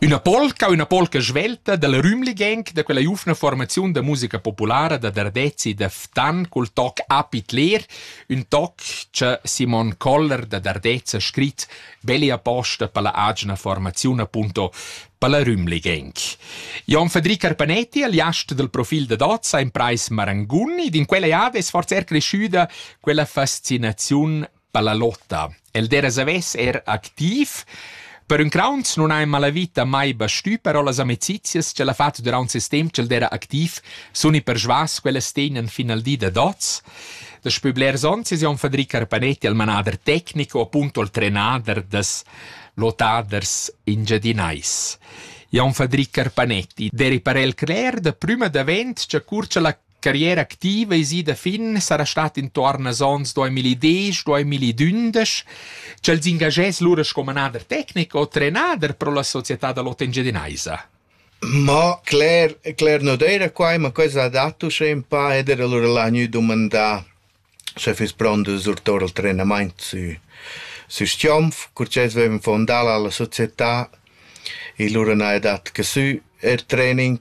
Üna polca, üna polca svelta dalla Rümligenk da quella giuvna formaziun da musica populara da Dardezzi da Ftan cul toc Apit Leer, ün toc cha Simon Koller da Dardez ha scrit belli aposta per la agina formaziun appunto per la Rümligenk. Jon Federic Carpanetti, aliast del profil da Dozza, ha imprais Marangun ed in quella jave es forza er cresciuda quella fascinaziun Pallalotta. El dera savess er activ. Per ün crauns non ha in malavita mai bastü, però las amicizias ch'el ha fat durant ses temp ch'el dera activ sun i persvas ch'ellas tegnan fin al di da dots. Daspö blers ons es Jon Fadri Carpanetti il manader tecnico appunto il trenader das lottaders engiadinais. Jon Fadri Carpanetti deri parel cler da prüma davent cha cur cha la carriera activa es ida fin, sarà stat intuorn als ons 2010, 2012, ch'el s'ingagess lura sco manader tecnic o trenader pro la società da l'Ot Engiadinaisa. Ma Claire, Claire non era qua, ma quella ha dato uschè un pa ed era lura là gnü dumandà se fiss pront de surtor al trenament sü, sü Stiomf, cur ch'els vevan fondà la società e lura n'ha dat che sü er training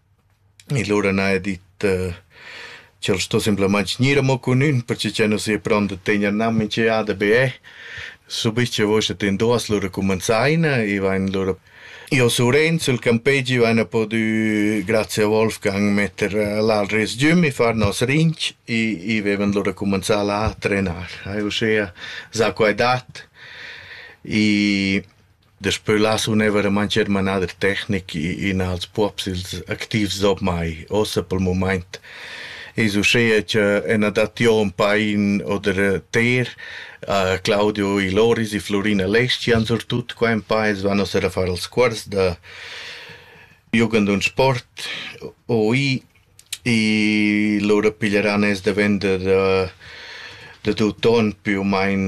E lura n'haja dit ch'el sto simplamaing gnir amo cun ün perche ch'el nu s'ia pront da tegner gnanc minch'eada be eh. Subich cha vosa ten duos lura cumanzaina e vain lura... Io sur Enzo, il campegi, vaina podü, grazie a Wolfgang, metter là il resgüm e far nos rinch e vevan lura cumanzà là a trenar. Haja uschea za quai dat e Daspö là suneva da mancher manader tecnic in als puobs ils activs ormai. Uossa pel mumaint es uschea cha ena dat Jon Pain oder Ter, Claudio i Loris e Florina Leschian surtut qua ün pa, els van uossa da far els cuors da jugend und sport OI e lura piglieran els davent da da tut on più u main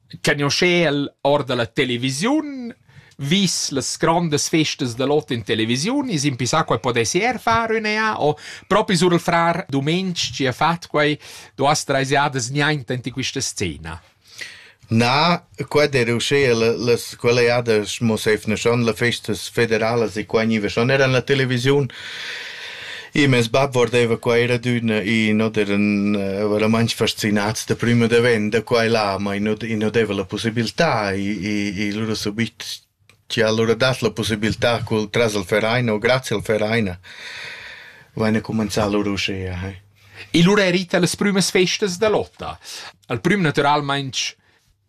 cagnuoschel or da la televisiun, vis las grondas festas da l'ot in televisiun, is impissà quai podessi er far üna ja, o propi sur il frar Dumenic chi ha fat quai duas treis jadas niainta in quista scena. Na, qua era uschea las quelle jadas mo seifneschan le festas federalas e qua gniva schon era en la televisiun. E mes bab vardeva qua era adüna e not eran eh, veramaints fascinats da prüm ed avant da qua e là, ma i not, i not deva la possibilità e, e, e lura subit ci ha lura dat la possibilità col tras al Verein o grazie al Verein vaina comenzà lura uschea. Eh. E lura è rita las prümas festas da lotta. Al prüm naturalmaing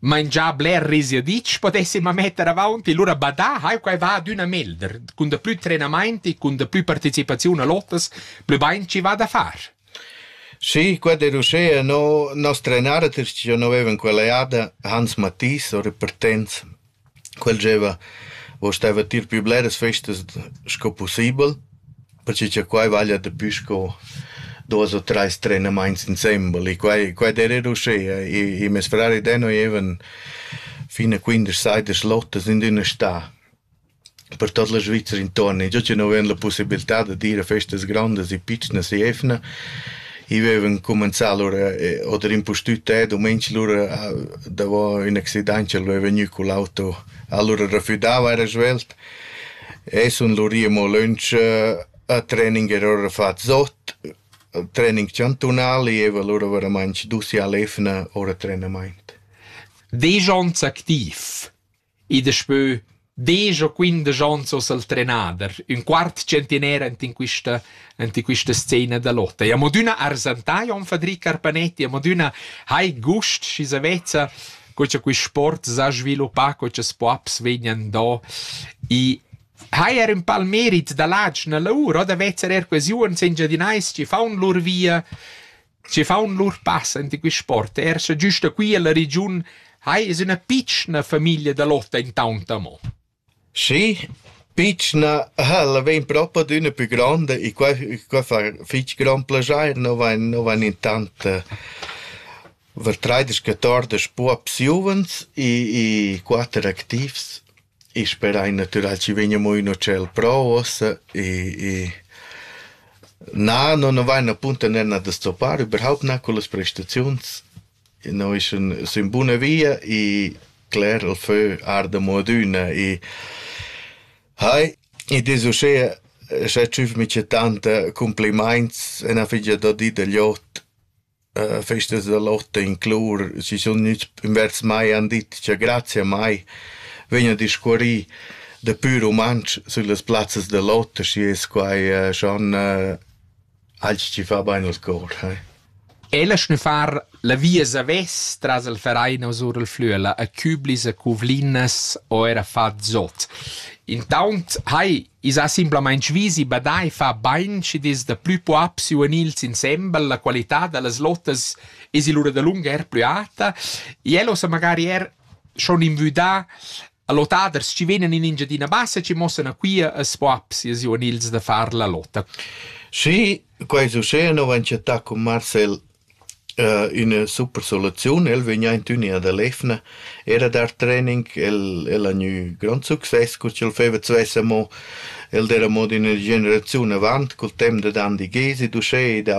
mangià bler risiaditsch podessi ma metter avaunt e lura badà hai quai va adüna melder cun daplü trenamaint e cun daplü partecipaziun a lottas plü bain chi va da far Sì, quella era uschea, no, nos trenader, tiers chi già no vevan quella jada, Hans Mathis, o repartenz, Quel gieva o steva tier pü bleras festas sco pussibel, perche cha quai vaglia dapü sco duos o trais trenamaints insembel e quai quai d'eira uschea. I meis frar ed eu nu gievan fin a quindesch saidas lottas in üna stà. per tot la Svizra inton e già nu ven la pussibiltà da dir a festas grondas e pitschnas e efna i vevan cumenzà lura oder impustüt te domenc lura davo ün accident ch'el veva gnü cun l'auto allura refüdava era svelt e sun lur i amo lönch a training era ora fat zot training chantunal e eva lura veramainch dus i all efna ora trenamaint. Vejans activ I daspö desch o quindesch ons ho el trenader, ün quart tschentiner ant in quista ant in quista scena da lotta. E amo d'üna arsantà, Jon Fadri Carpanetti, amo d'üna hai gust, schi sa vezza co cha quist sport s'ha sviluppà, co cha's po aps vegnan do. I hai er ün pal merit da ladsch nella ura, da vezzer er quasi uonn sengiadinais chi faun lur via Schi faun lur pass enta quist sport. Er scha güsta qui illa regiun hai es üna pitschna famiglia da lotta intaunt amo. Schi, pitschna ha'la vain propi adüna pü gronda e quai qua fa fich grand plaschair, no vain no vain intant vers traidesch, quatordesch puops giuvens e e quatter activs. I sperai natüral chi vegna amo ün ucel pro uossa e e na, no nu vain appunto ner da stoppar überhaupt na cullas prestaziuns. No is ün sün buna via e cler il fö arda amo adüna e hai, id es uschea scha tschüfmi c'è tanta cumplimaints e na figia da dir da gl'ot festas da lotta inclur si sun gnüts invers mai han dit cha grazia a mai vegn a discurrir da pür rumantsch süllas plazzas da lotta, schi es quai schon alch chi fa bain al cor, eh. E la schnüffar la via savess tras il Vereinos our il Flüela a Küblis, a Cuvlinas o eir a far zot. Intaunt hai I's ha simplamaing vis e badai fa bain schi'd es da plü poap sü e nils insembel, la qualità da las lotas es lura dalunga eir plü alta. El ho sa magari eir schon invüdà lottaders chi vegnan in Engiadina Bassa chi mossan a quia as poaps e sü e nils da far la lotta. Sì, quai succeda, no vain chattà cun Marcel üna super soluziun. El vegn aint ün ed el efna. Era dar training, el el ha gnü grond success cu ch'el feva svess amo. El d'eira mo d'üna generaziun avant, cul temp dad Andy Gesi, d'uschè e da